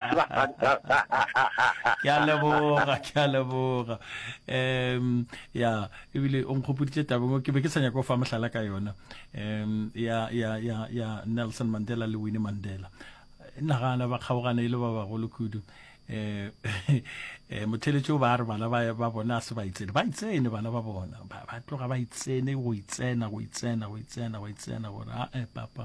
ke a leboga ke a leboga um ya ebile o nkgopoditše tabeng ke be ke sa nyako fa mohlala ka yona um ya ya ya ya nelson mandela le winnie mandela nagana ba kgaogana e le ba bagolo kudu um motheletšo ba re bana ba bona a se ba itsene ba itsene bana ba bona ba tloga ba itsene go itsena go itsena go itsena go itsena gore ae papa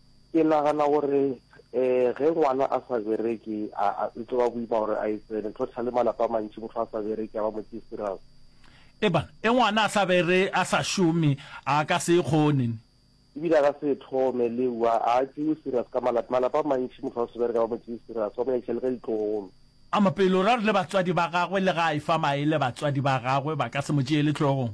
Ke nagana gore um ge ngwana a sa bereke e tlo ba boima gore a e tsene tlotlha le malapa a mantši motho a sa bereke a ba motho e serious Ebana e ngwana a sa bere a sa šome a ka se e kgone ne. Ebile a ka se e thome le ua a tšewe serious ka malapa malapa a mantši motho a se bereke a ba motho e serious ba mo nyakisa le ka ditlogolo. A mapelo ra re le batswadi ba gagwe le ga a e fa maele batswadi ba gagwe ba ka se mo tšeele tlhogong.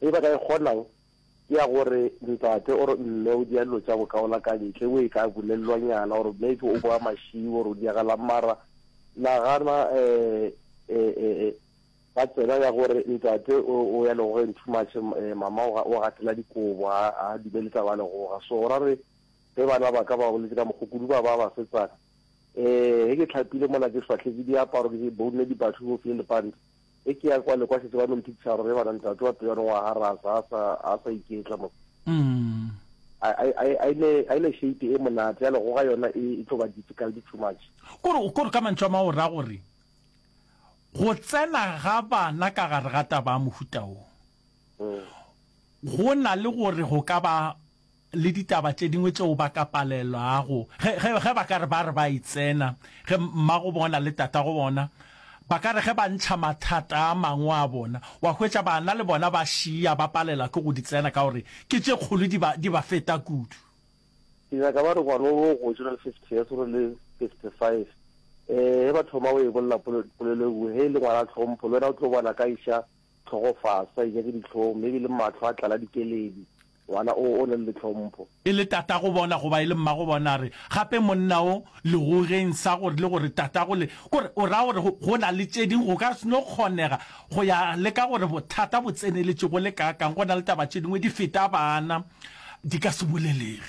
Ye ba ka e kgonago ke ya gore ntate or mme o dia dilo tša go kaola ka ntle, o e ka bolelelwanyana or maybe o boa mašiwi or o diagalang mara nagana ba tsena ya gore ntate o ya legogeng too much, mama o gatela dikobo ga a dumele taba ya legoga. So ra re ge bana ba ka ba boletse ka mokgo kudu ba ba basetsana, ge ke tlhapile mona ke swahletse diaparo ke bounne dipathu ke ofile lepanta, e ke ya kwa le kwa setse ba no mpitsharo re bana ntate wa peyano wa ha ra sa sa a sa iketla mo mm a ile shape e monate ya lego ga yona e, e tlo ba difficult too much kore kore ka mantšwa ma o ra gore go tsena ga bana ka gare ga taba ya mohutao mm. go na le gore go ka ba le ditaba tše dingwe tšeo ba ka palelwago, ge, ge, ge ba ka re ba re ba e tsena, ge mmago bona le tatago bona ba ka re ge ba ntšha mathata a mangwe a bona, wa hwetša bana le bona ba šiya ba palela ke go di tsena ka gore ke tše kgolo di ba, di ba feta kudu. Ke nyaka ba re ngwana wo go tšona le fifty years gore le fifty five, ee, ge ba thoma go e bolela pole, polelo e nngwe, ge e le ngwana tlhompho, le wena o tlo bona ka iša tlhogo fase, a inyake dihlong, maybe le mahlo a tlala dikeledi. Ngwana o o na le tlhompho. E le tatago bona goba e le mmago bona, a re gape monna wo legogeng sa gore le gore tatago le. Ke gore o ra gore go, go na le tše ding go ka se no kgonega go ya le ka gore bothata bo tseneletše go le kaakang, go na le taba tše dingwe di feta bana, di ka se bolelege.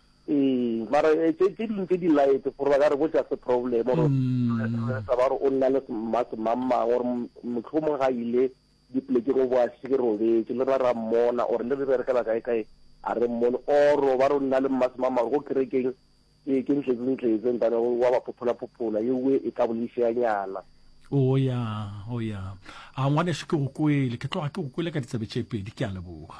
Ee, mara eh, tse tse dingwe tse di light gore ba ka re bo just problem or re sa ba re o nna le ma semamang or motlhomong ga ile dipolekeng o bo a se ke robetse le ra ra mmona or le re berekela kae kae a re mmone or ba re o nna le mma semamang go kerekeng ke ke ntletse ntletse ntane wa ba phophola phophola ye we e ka boleseanyana o ya o ya a ngwaneso ke go kwele ke tloga ke go kwele ka ditsabe tše pedi ke a leboga